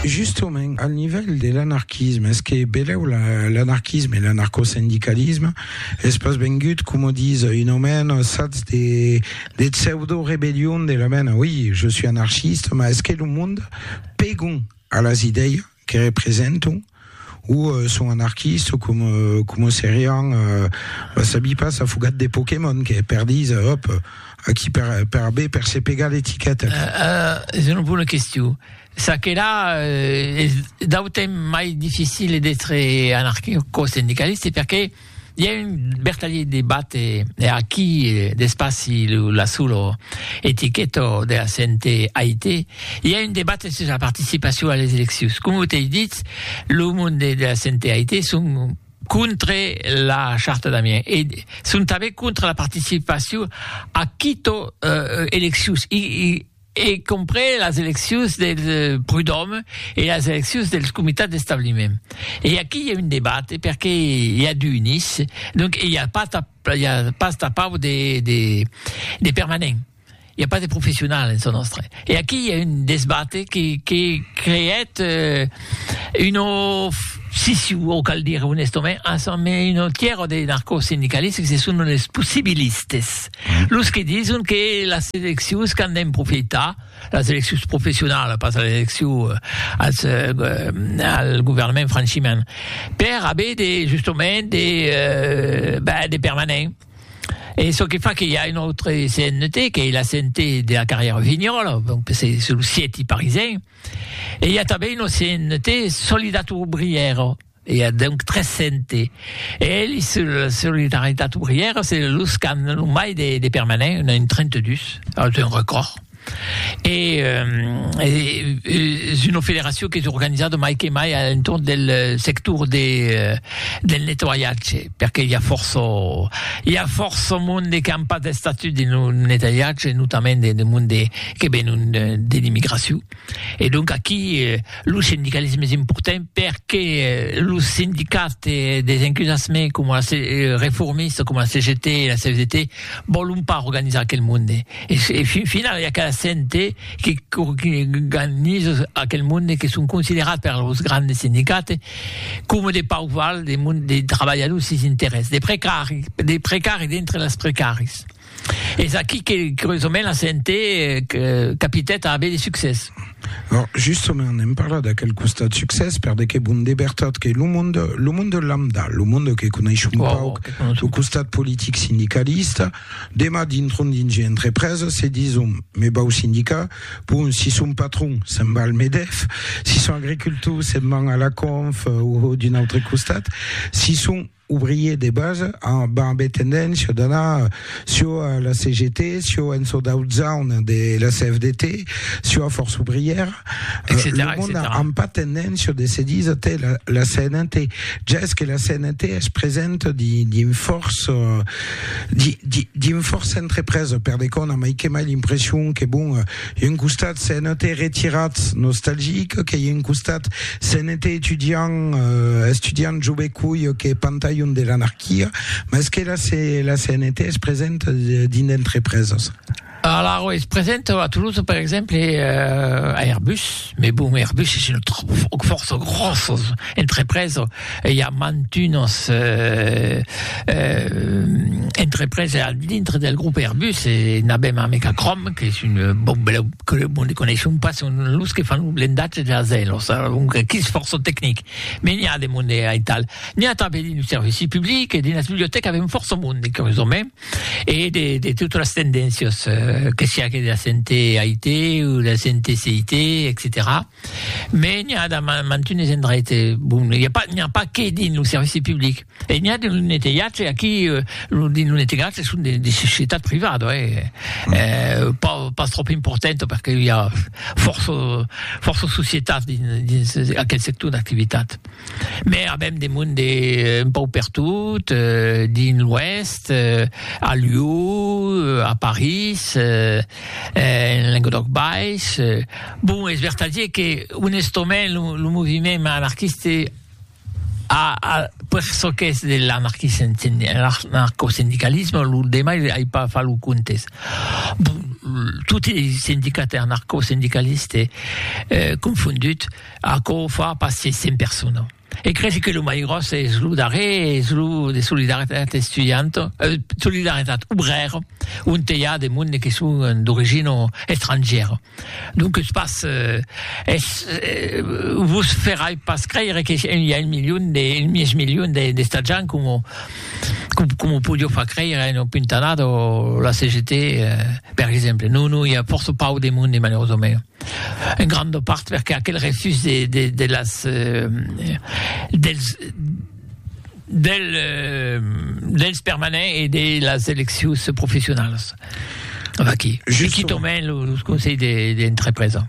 Justement, al nivèl de l'anarquisme, es que belèu l'anarquisme e l'anarcosindicalisme es pas vengut, coma dis un omèn, sats de pseudo-rebellion de la mena, oi, je suis anarchiste, mas es que lo monde pegon a las idèias que representam o son anarquista o com, com o serián, va sabi pas, afogat de Pokémon, que per dins, hop, aquí per, per abé, per se pegar l'etiqueta. Uh, uh, és una bona qüestió. Ça que là, uh, és d'autant mai difícil d'être anarquista o sindicalista perquè I a un bertalhit de bate e aquí d'espaci lo la sulo etiqueto de la CNT AIT. I a un debat sus la participacion a les eleccions. Com ho t'ei dit, lo monde de la CNT AIT son contre la charta d'Amiens e son tanben contre la participacion a quito eleccions. I, i, e compren las eleccions del Prud'òme e las eleccions dels comitats d'establiment. E aquí i a un debat perque i a d'unis, donc i a pas i a pas tapau de de de permanents, i a pas de professionals en çò nòstre. E aquí i a un desbat que que creèt un of siciu o cal dire onestament, un tièr de narcosindicalistes que se son los possibilistes. Los que dison que las eleccions qu'an d'en profitar, las eleccions professionalas, pas las eleccions eh, als, eh, eh, al governament franchiment, per haver de, justament, de, eh, ben, de permanent. E çò que fa que hi a un autre CNT, que la CNT de la carrière Vignol, donc c'est sur le siète parisien, e hi a tanben un CNT Solidat Obriero, I a donc 300 e elhi sur la solidaritat obrièra se los qu'an lo mai de permanents, un a un 32, es un recòrd. E es una federacion qu'es organizada mai que mai a l'entorn del sector del nettoiatge, perque i a fòrça i a fòrça monde qu'an pas d'estatut dins lo nettoiatge, notament de monde que venon de l'immigracion. E donc aquí lo sindicalisme es important perque los sindicats des encusassement coma la reformista coma la CGT e la CFDT vòlon pas organizar aquel monde e fin finala i a cada cente que organiza aquel monde que son considerats per los grandes sindicats coma de pauc val de trabalhadors sis interès de precari de precari dintre las precaris. Es aquí que, curiosament, la CNT capitèt a aver de succès. Bon, justament, n'èm parlat d'aquel costat succès, per de que bon, de vertat, que lo monde, lo monde lambda, lo monde que coneishum wow, pauc, wow, lo costat politic sindicalista, demà dintron dins una entrepresa, se dison, me vau sindicar, bon, si son patron, se'n va al Medef, si son agricultor, se'n van a la Conf, o d'un autre costat, si son ouvrier de base amb ambé tendéncia d'anar sio a la CGT, sio en çò d'autzaun de la CFDT, sio a Força Ouvrièra, lo mond a amb pas tendéncia de se disa tè la, la CNT. Ja es que la CNT es presenta di, dins fòrça, di, di, dins fòrça entrepresa, per de cò on a mai que mai l'impression que bon, I un costat se'n ète retirat nostalgic, que i un costat se'n ète etudiant, estudiant jove coi que pantalhon de l'anarquia, mas que la, la CNT es present dins d'entrepreses. Alara, es present a Toulouse, per exemple, a Airbus, Mes bon, Airbus es una fòrça gròssa entrepresa e i a mantunas entrepresa al dintre del grop Airbus e n'avèm a Mecacrom qu'es un bon bèla que lo monde coneisson pas son los que fan lo blendatge de las aèlos donc aquí es fòrça tecnic me n'i a de monde aital n'i a tanben dins lo servici public e dins las bibliotècas avèm fòrça monde curiosament E de, de totes les tendéncias, eh, que siá que de la sente AIT o de la sente CIT, etc. Me n'hi ha de mantunes endreit, eh, bon, n'hi ha pas, n'hi ha pas que dins lo servici public. E n'hi ha dins lo neteatge, aquí, eh, lo, dins lo neteatge son de, de societat privada, eh, mm. eh, pas, pas trop important, perquè hi ha força, força societat dins, dins aquel sector d'activitat. Mès avèm de monde un pauc pertot, dins l'Oèst, a Lió, a París, en Lenguedoc Baish. Bon, es vertadier que, onestament, lo, lo moviment anarquiste a, a, per çò qu'es de l'anarquisme, anarcosindicalisme, lo demai ai pas fach lo comptes. Bon, toti es sindicats anarcosindicalistes confondut. Aquò fa pas se cent persona. E cresi que lo mai gròs es lo darrer, es lo de Solidaritat Estudianta, eh, Solidaritat Obrèra, onte i a de monde que son d'origina estrangièra. Donques pas, eh, es, eh, vos ferai pas creire que i a un milion de, un mièg milion de, d'estatjants coma, coma podió far creire una puntanada la CGT, eh, per exemple. Non, non, i a fòrça pauc de monde, malerosament. En granda part perque aquel refús de de de las dels del dels permanents e de las eleccions professionalas. Vaqui, se quitòmen los conselhs de de entrepresa.